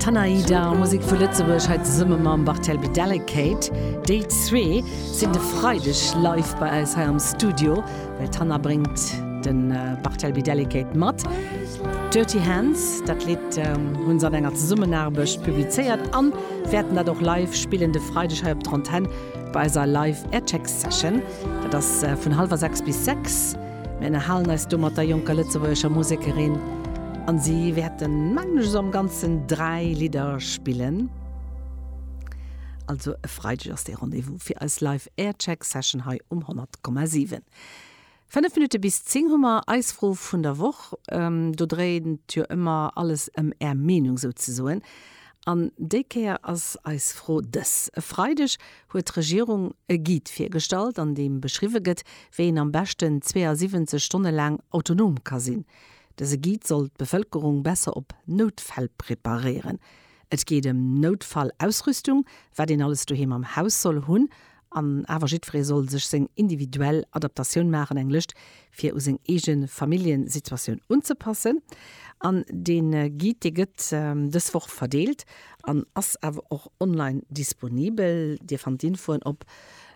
D'Tanayida a Musek vu Lëtzebuerg hei zesumme mam Barthelby Delicate. Déi zwee sinn de Freideg live bei eis hei am Studio, well d'Tana bréngt de Barthelby Delicate mat. Dirty Hands, dat Lidd hu se an enger Zesummenaarbecht publizéiert a wäerten dat och live spillen de Freideg hei op der Antenn bei eiser Live Aircheck Session. Dat ass vun hallwer sechs bis sechs. Mir ënnerhalen eis do mat der jonker lëtzebuergescher Musekerin an si wäerten, mengen ech, esou am Ganzen dräi Lidder spillen. Also e Freideg ass dee Rendez-vous fir eis Live Aircheck Session hei um 100,7. Fënnef Minutte bis zéng hu mer eis Fro vun der Woch. Do dréint jo ëmmer alles ëm Är Meenung souzesoen. An déi Kéier ass eis Fro dës, E Freideg huet d'Regierung e Guide virgestallt, an deem beschriwwe gëtt, wéi een am beschten 72 Stonne laang autonom ka sinn. Dëse Guide soll d'Bevëlkerung besser op Noutfäll preparéieren. Et geet ëm Noutfallausrüstung, wat een alles doheem am Haus soll hunn An awer jiddweree soll sech seng individuell Adaptatioun maachen, eng Lëscht fir u seng eege Familljesituatioun unzepassen. An dee Guide, dee gëtt dës Woch verdeelt an ass awer och online disponibel. Dir fannt d'Infoen op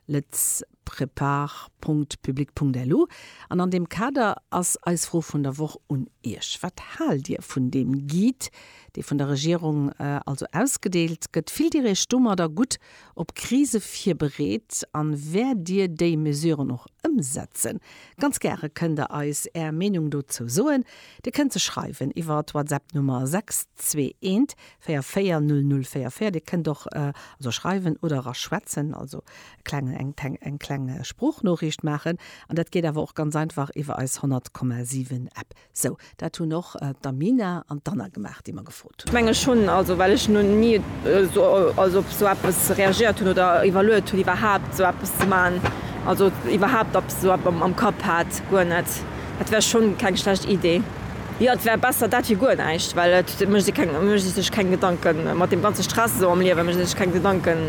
letsprepare.public.lu. An an deem Kader ass eis Fro vun der Woch un Iech, Wat haalt Dir vun deem Guide, dee vun der Regierung also ausgedeelt gëtt? Fillt Dir Iech domadder gutt op Krise virbereet an wäert Dir déi Mesuren och ëmsetzen? Ganz gäre kënnt Der eis Är Meenung dozou soen. Dir kënnt se schreiwen iwwer d'Whatsapp Nummer 6214400444. Dir kënnt och also schreiwen oder era schwätzen, also eng kleng Sproochnoriicht maachen. An dat geet awer och ganz einfach iwwer eis 100,7 App. Sou, dat hunn och d'Amina an d'Anna gemaach, déi mer gefrot hunn. Menge schonn, also well ech no ni also op sou eppes reagéiert hunn oder iwwerluet hunn iwwerhaapt esou eppes ze maachen, also iwwerhaapt eppes esou epp am Kapp hat, guer net. Dat wär schonn keng schlecht Idee. Jo, et wär besser dat wéi guer näischt, well et mécht ee keng mécht ee sech keng Gedanken mat deem ganze Stress esou am Liewen, mécht ee sech keng Gedanken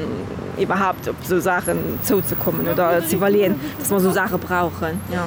iwwerhaapt op esou Saachen zouzekommen oder z'iwwerleeën, dass mer esou Saache brauchen, jo.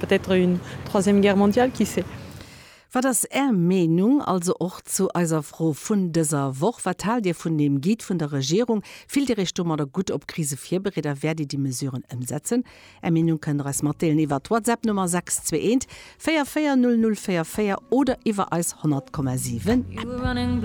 Peut-être une troisième guerre mondiale, qui sait? Wat ass Är Meenung also och zu eiser Fro vun dëser Woch? Wat haalt Dir vun deem Guide vun der Regierung? Fillt Dir Iech domadder gutt op Krise virbereet a wäert Dir déi Mesuren ëmsetzen? Är Meenung kënnt Der eis matdeelen iwwer d'Whatsapp Nummer 621 44 00 44 oder iwwer eis 100,7 App.